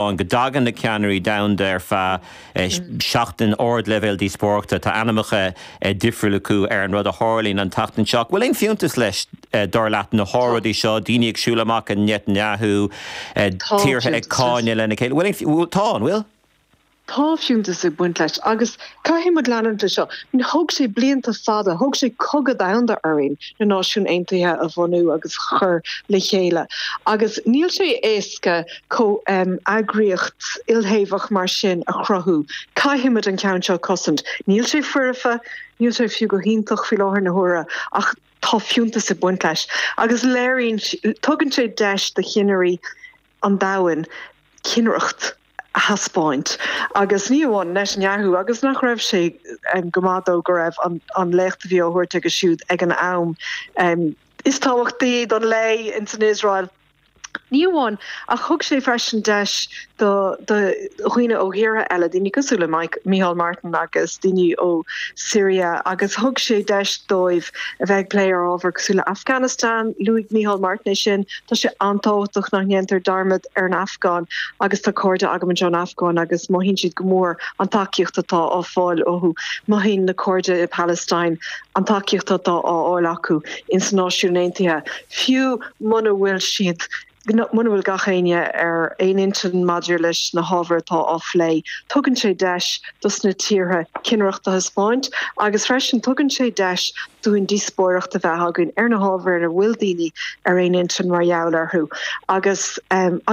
ann go dtagann na ceannairí domhanda ar feadh seachtain, ardleibhéal díospóireachta, tá ainmneacha difriúla acu ar an rud a tharlaíonn an tseachtain seo, ach bhfuil aon fiúntas leis, dar leat, na hóráidí seo, daoine ag siúl amach ó Netanyahu, tíortha ag cáineadh lena chéile, bhfuil aon, tá, an bhfuil? tá fiúntas ag baint leis agus Caithfidh muid leanúint de seo. Thóg sé blianta fada, thóg sé cogadh domhanda orainn na Náisiúin Aontaithe a bhunú agus a chur le chéile agus níl sé éasca comheagraíocht ilthaobhach mar sin a chruthú. Caithfidh muid an ceann seo a chosaint. Níl sé foirfe, níl sé fiú go hiontach faoi láthair na huaire ach tá fiúntas ag baint leis agus léiríonn, tugann sé deis do cheannairí an domhain cinnireacht a thaispeáint agus ní amháin le Netanyahu agus nach raibh sé go maith dó go raibh an léacht a bhí á thabhairt aige siúd ag an am is tábhachtaí don lae ins an Iosrael ní amháin ach thug sé freisin deis do dhaoine ó thíortha eile, daoine cosúil le Micheál Martin agus daoine ó Siria agus thug sé deis dóibh a bheith ag plé ar ábhar cosúil le Afganastan, luaigh Micheál Martin é sin, Tá sé an-tábhachtach nach ndéantar dearmad ar an Afgáin agus tá cairde agam anseo ón Afgáin agus mothaíonn siad go mór an tacaíocht atá á fáil acu. Mothaíonn na cairde i bPalestine an tacaíocht atá á fháil acu in sna Náisiúin Aontaithe, fiú muna bhfuil siad, muna bhfuil gach éinne ar aon intinn maidir leis na hábhair atá á phlé. Tugann sé deis dos na tíortha cinnireacht a thaispeáint agus freisin tugann sé deis dúinn díospóireacht a bheith againn ar na hábhair nach bhfuil daoine ar aon intinn mar gheall orthu agus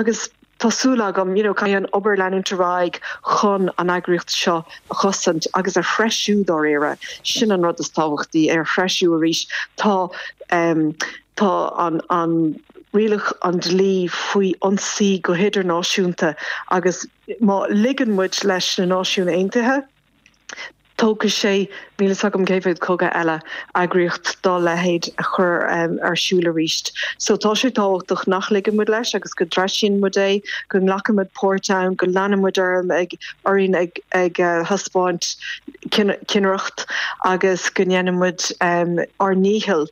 agus tá súil agam you know caithfidh an obair leanúint ar aghaidh chun an eagraíocht seo a chosaint agus a threisiú dáiríre sin an rud is tábhachtaí é a threisiú arís tá um tá an an rialach an dlí faoi ionsaí go hidirnáisiúnta agus má ligeann muid leis na Náisiúin Aontaithe Tógfaidh sé, níl fhios agam cé mhéad cogadh eile, eagraíocht dá leithéid a chur ar siúl arís. So tá sé tábhachtach nach ligeann muid leis agus go dtreisíonn muid é, go nglacann muid páirt ann, go leanfaidh muid orainn ag thaispeáint cinnireacht agus go ndéanann muid ár ndícheall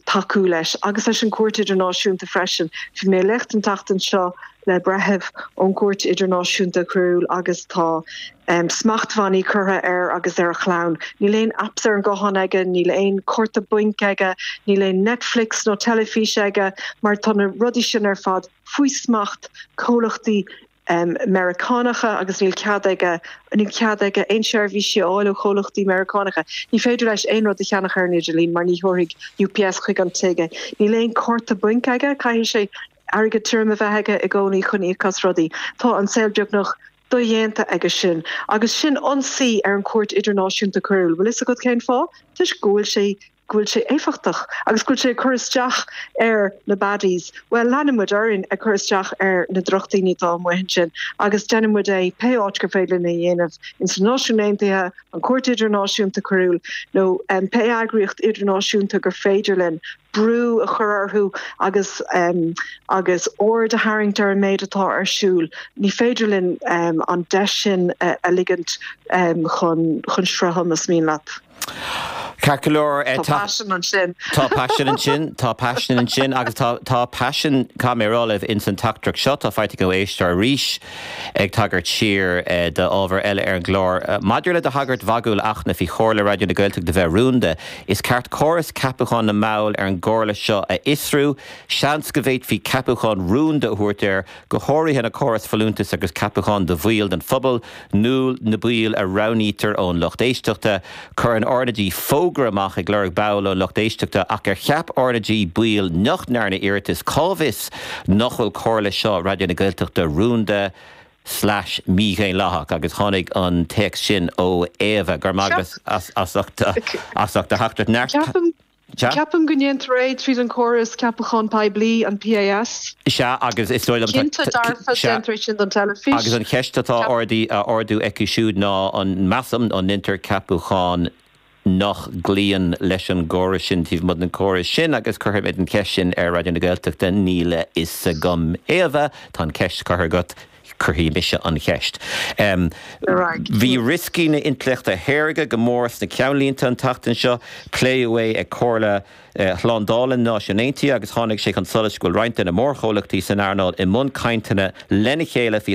tacú leis agus leis an Chúirt Idirnáisiúnta freisin. Bhí mé ag léacht an tseachtain seo le breitheamh ón gCúirt Idirnáisiúnta Coiriúil agus tá smachtbhannaí curtha air agus ar a chlann. Níl aon apps ar an nguthán aige, níl aon chárta bainc aige, níl aon Netflix nó teilifís aige mar tá na rudaí sin ar fad faoi smacht comhlachtaí Meiriceánacha agus níl cead aige níl cead aige aon seirbhísí a fháil ó chomhlachtaí Meiriceánacha. Ní féidir leis aon rud a cheannach ar an idirlíon mar ní thabharfaidh UPS chuig an tigh é. Níl aon chárta bainc aige, caithfidh sé. airgead tirim a bheith aige i gcónaí chun íoc as rudaí. Tá an saol beagnach dodhéanta aige sin. Agus sin ionsaí ar an gcúirt idirnáisiúnta coiriúil. Bhfuil fhios agat cén fáth? Toisc go bhfuil sé, go bhfuil sé éifeachtach agus go bhfuil sé ag cur isteach ar na baddies. Bhuel, leanann muid orainn ag cur isteach ar na drochdhaoine atá amuigh ansin agus déanann muid é pé áit gur féidir linn a dhéanamh, ins na Náisiúin Aontaithe, an Cúirt Idirnáisiúnta Coiriúil nó pé eagraíocht idirnáisiúnta gur féidir linn. brú a chur orthu agus aird a tharraingt ar an méid atá ar siúl. Ní féidir linn an deis sin a ligint chun chun srutha más mian leat. Ceart go leor, tá paisean ansin. Tá paisean ansin agus tá tá paisean, caithfidh mé a rá libh, insan teachtaireacht seo atá faighte againn ó éisteoir arís ag tagairt siar d'ábhar eile ar an gclár. Maidir le do thagairt mhagúil, a Fhachtna, faoi Chomhairle Raidió na Gaeltachta bheith rúnda, Is ceart córas ceapachán na mball ar an gComhairle seo a fhiosrú. Seans go bhféadfaí ceapacháin rúnda a thabhairt air, go háirithe an córas folúntas agus ceapacháin do bhaill den phobal, nó na baill a roghnaítear ón lucht éisteachta. Cuireann RnaG fógra amach ag lorg ball ón lucht éisteachta, ach ar cheap RnaG baill nach ndearna iarratas? Cá bhfios nach bhfuil Comhairle seo Raidió na Gaeltachta rúnda? slais mhídhaonlathach, agus tháinig an téacs sin ó Éabha, go raibh maith agat as ucht do theachtaireacht. Sea. Ceapaim go ndéantar é tríd an chóras ceapacháin poiblí, an PAS. Sea, agus is dóigh liom. Cinnte dearfa, déantar é sin don teilifís. Agus an cheist atá á ardú acu siúd ná, measaim, an ndéantar ceapacháin. nach gcloíonn leis an gcóras sin taobh amuigh den chóras sin agus cuirfimid an cheist sin ar Raidió na Gaeltachta, níl a fhios agam. Éabha, tá an cheist curtha agat, cuirfidh mise an cheist. Bhí rioscaí na hintleachta saorga go mór sna ceannlínte an tseachtain seo. Pléadh é ag Comhairle Shlándála na Náisiún Aontaithe agus tháinig sé chun solais go bhfuil roinnt de na mórchomhlachtaí san earnáil i mbun cainteanna lena chéile faoi